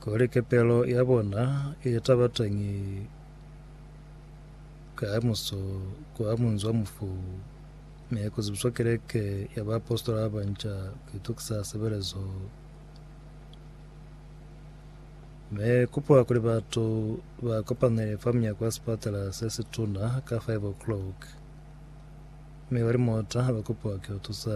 Kuli kepelo ya bona i taba teñi kamuso kwa munzi wa mufu, mi ku zibiswa keleke ya baapositola ba banca ku itukisa sebelezo. Mi kupuwa kuli batu ba kopanele fa munyako wa sipatala se situna ka 5 o'clock, mi ba limota ba kupuwa ku yo tusa.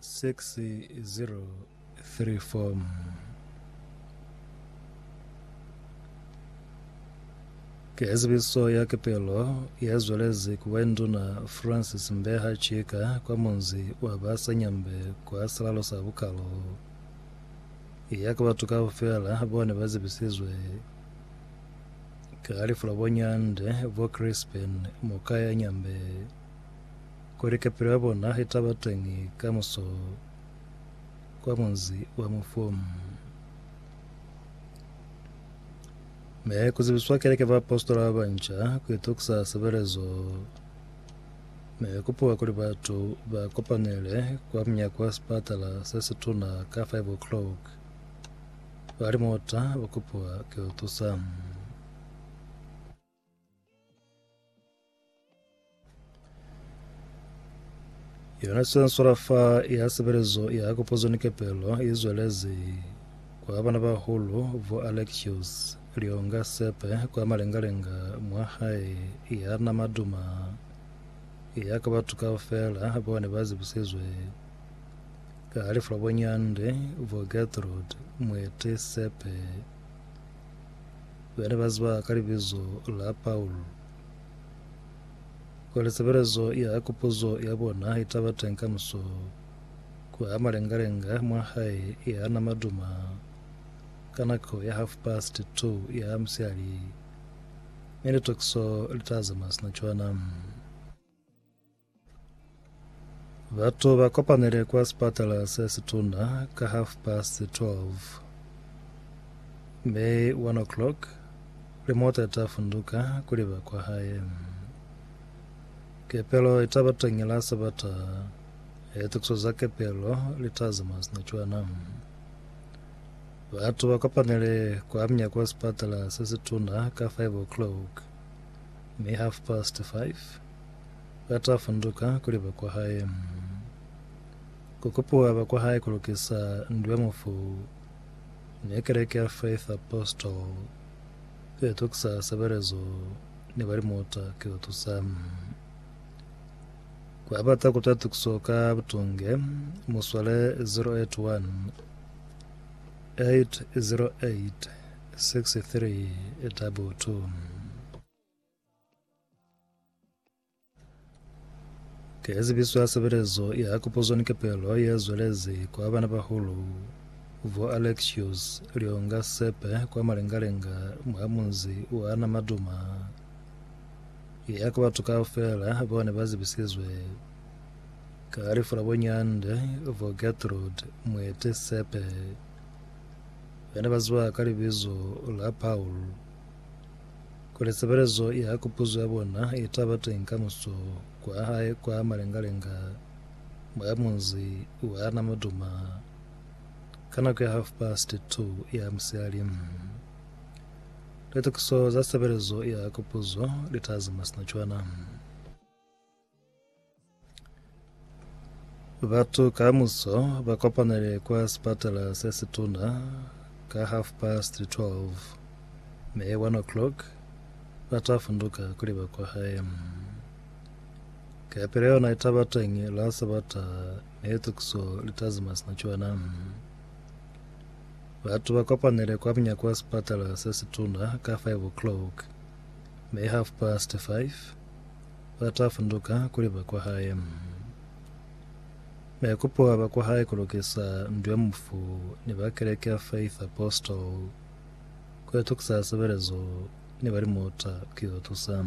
6034 Form 4 Ki ezibiso ya kepelo ye zwelezi ku bwa Nduna Francis Mbeha Chika kwa munzi wa ba Sanyambe kwa silalo sa Bukalo. I ya ka batu kaufela bao ne ba zibisizwe ka lifu la bo Nyande, bo Crispin Mokaya Nyambe. Kuli kapelo ya bona itaba teñi kamuso kwa munzi wa Mufum. Me kuzibiswa keleke baapositola ba banca kuitokisa sebelezo me kupuwa kuli batu ba kopanele kwa munyako wa sipatala se situna ka 5 o'clock. Ba limota ba kupuwa kiutusa. Yona sensora fa ya sebelezo ya kopotso ni kepelo i zwelezi kwa bana ba hulu vo Alexios Lionga Sepe kwa malengalenga mwa hae ya nama duma ya ka batho kaufela ba ne ba zibusizwe ka lefu la bonyande vo Gertrude Mwete Sepe Bene ba ziba ka libizo la Paul. Kwale sebelezo ya kupuzo ya bona itaba teng kamuso kwa malengalenga mwa hae ya nama duma ka nako ya half past two ya musiali, mi litokiso litaza masina cwana. Batu ba kopanile kwa sipatala se situna ka half past 12 mi 1 o'clock limota ita funduka kuli ba kwa hae. Kepelo ita ba teñi la Sabata, e tukiso za kepelo li ta zama sina cwana. Batu ba kopanile kwa mnya kwa sipatala se situna ka 5 o'clock mi half past 5 Ba ta funduka kuli ba kwa hae. Ku kupiwa ba kwa hae ku lukisa ndu ya mufu ne Keleke ya Faith Apostle ki yo tukisa sebelezo ni ba limuta ki yo tusa. Ku ba bata ku twa tukiso ka butunge, mu swale 081 808 6322. Ke zibiso ya sebelezo ya kupuzo ni kepelo ye zwelezi kwa bana bahulu vo Alexios Lionga Sepe kwa malengalenga mwa munzi wa Namaduma ya ku batu kaufela bao ne ba zibisizwe ka lifu la bonyande vo Gertrude Mwete Sepe bana ba ziwa ka libizo la Paul Kuli sebelezo ya kupuzo ya bona i ta ba teñi ka muso kwa hae kwa malenga-lenga mwa munzi wa Namaduma ka nako ya half past two ya musihali, litokiso za sebelezo ya kupuzo li ta zama sina cwana. Batu kamuso ba kopanele kwa sipatala se situna ka half past 12 me 1 o'clock ba ta funduka kuli ba kwa hae. Kapele yona i taba teñi la Sabata me litukiso li ta zima sina cwana. Batu ba kopanele kwa munyako wa sipatala se situna ka 5 o'clock me half past 5 ba ta funduka kuli ba kwa hae. Maikupo a ba kwa hae ku lukisa ndu ya mufu ni ba Keleke ya Faith Apostle, ku itukisa sebelezo ni ba limuta ku yo tusa.